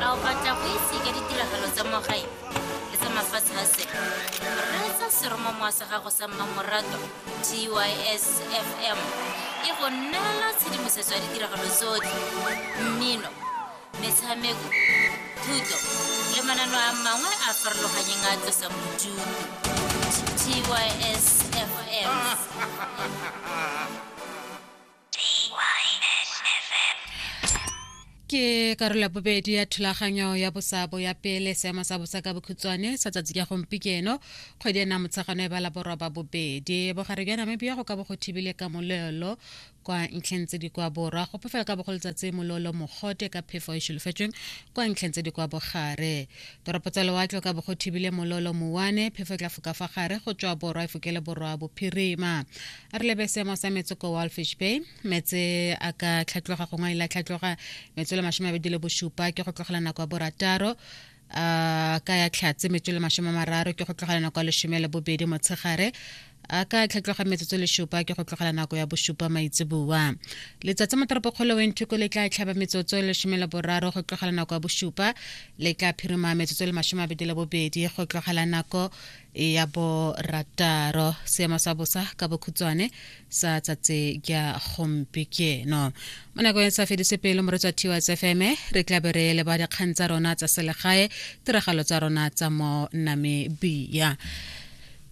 a o batla go itse ka ditiragalo tsa mo gae le tsa mafatshe a sele reetsa seromamowa sa gago sa mmamoratwa tysfm e go neela tshedimosetso ya ditiragalo tsotlhe mmino metshameko thuto le manano a mangwe a farologanyeng a tlosang bodutu tysfm ke karolo ya bobedi ya thulaganyo ya bosabo ya pele seemo sa bosa ka bokhutshwane sa tsatsi ka gompikeno kgwedi ena motshegano e ba laborwa ba bobedi bogare bja namibia go ka bo go thibile ka molelo kwa ntlheng tse di kwa borwa go pefela ka bogolo tsatsi mololo mogote ka phefo e šolofetsweng kwa ntlheng tse di kwa bogare toropo tsa lewatle ka bo go thibile mololo mowane phefo e tla foka fa gare go tswa borwa e fokele borwa bophirima re lebe seemo sa metso ko walfish bay metse a ka tlhatloga gongwe e la tlhatloga metso le masome abedi le bosupa ke go tlogela nako ya borataro a ka ya tlhatse metso le masome mararo ke go tlogela nako ya lesome le bobedi motshegare a ka tlhatloga metsotso lesupa ke go tlogela nako ya bosupa maitseboa letsatsi mo toropokgolo wenthuko le tla tlhaba metsotso lesome le boraro go tlogela nako ya bosupa le tla phirima metsotso le masome abedi le bobedi go tlogela nako e ya bo rataro seemo sa bosa ka bokhutshwane sa tsatse kya gompieno mo nakong e sa fedise pele mo re tswa thiwa tsfm re tla be re leba dikgang tsa rona tsa selegae tiragalo tsa rona tsa mo namibia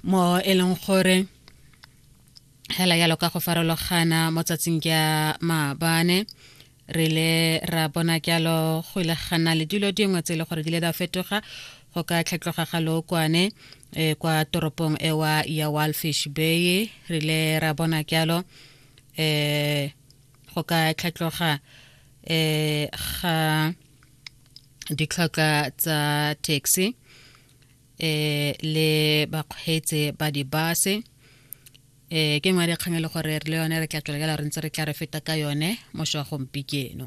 mo e leng gore hela yalo ka go farologana mo tsatsing kya maabane re ile ra bona jalo go ile gana le dilo dingwe tse e le gore di ile da fetoga go ka tlhetloga ga lookwane e, kwa toropong ewa ya walfish bay re ile ra bona jalo um go ka tlhetloga um ga ditlhoka tsa taxi um le bakgweetse ba dibase ee ke nngwe ya dikgang e le gore re le yone re tla tswelela re ntse re tla re feta ka yone moso wa gompikeno